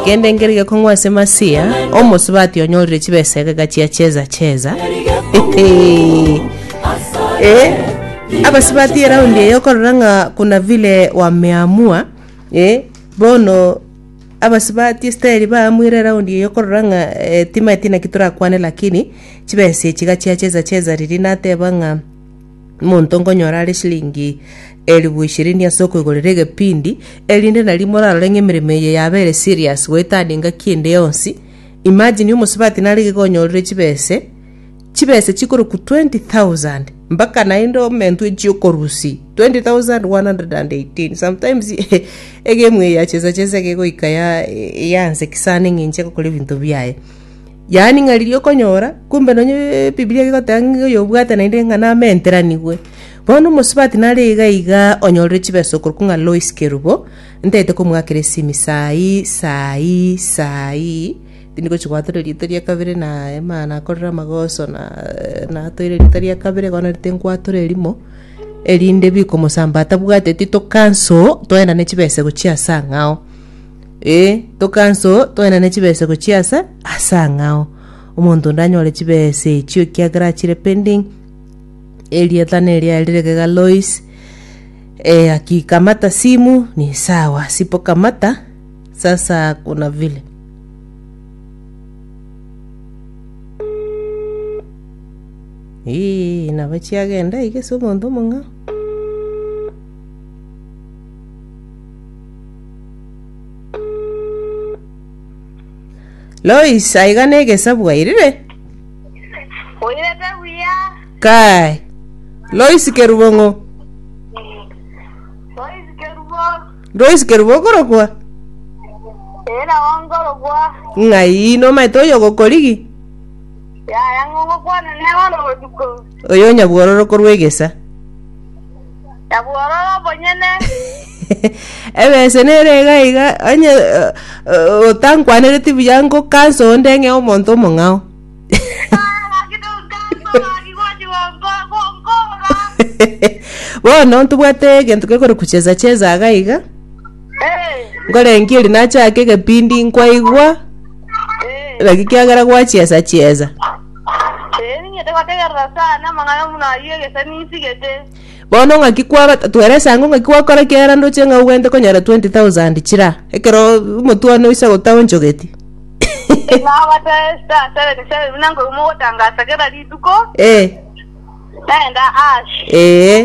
Gende ngeri gekong'wa ase Masia, omosubati onyorire chibesa egeka chia cheza cheza. eh, abasubati eraundi eye okorora ng'a kuna vile wameamua eh, bono abasubati esteri baamwire eraundi eye okorora ng'a eh, timaeti naki torakwane lakini chibesa echi iga chia cheza cheza riria nateba ng'a Omonto nkonyora are chiringi elifu ishirini ase okoigorera egepindi, erinde nario morarore ng'a emeremo eye yabeire serious goeta ande engaki ende yonsi. Imagine omosubati nare iga konyorire chibese, chibese chikorokwa 20,000 mpaka naende omentu echia okorusi 20,118 sometimes egemu eye ya chesa chesa iga egoika ya- yansekisa ande ng'a inche ngokora ebinto biaye. Yaani ng'a riria okonyora, kumbe nonye ebibilia egoteba ng'a oyobwate naende ng'a namenteranigwe. Bono omosubati nare iga iga onyorire chibesa okorokwa ng'a Lois Kerubo, ntaete komoakera esimi saa ii, saa ii, saa ii, tindi gochi goatora erieta ria kabere na ema nakorere amagoso na natoire erieta ria kabere igo naende tinkwatora erimo, erinde bikomosamba atabwateti to cancel, toenda ne chibesa gochia ase ang'ao. Ee, tokanso toenane chibesego chi'aase ase ang'ao, omonto onde anyore chibesa echio ekiagera achire pending. Erieta neria riregega Lois, ee akikamata simu, ni sawa, sipo kamata, sasa kuna vile. Ii, nabo chiagenda iga ase omonto omong'ao. Lois aiga negesabu airire. Oirete buya. Kai. Lois kerubong'o. Lois kerubo. Lois kerubo okorokwa. Era wangorogwa. Ng'ai nomaete oyo gokorigi. Yaya ng'ogokwana ne oro botuko. Oyo nyabwororo korwa egesa. Na bwororo bonyene Ebese nere iga iga onye eh, eh, otankwanereti buya ngokansa onde ng'e omonto omong'ao. Bono ntobwate egento gekore kucheza cheza iga iga. Ngorengia eri nachake egepindi nkwaigwa naki kiagera gwacheza cheza. Ering'ete gotegerera sana amang'ana buna ayio egesa ninsigete. Bono ng'aki kwabata twere ase ango ng'aki gwakora kiara ndoche ng'a ogwente konyora 20,000 chira ekero omotwe one oise gota onchogeti. Nabata star seven seven buna nkoigwa mogotangasa kera rituko. Ee. Naenda ash. Ee.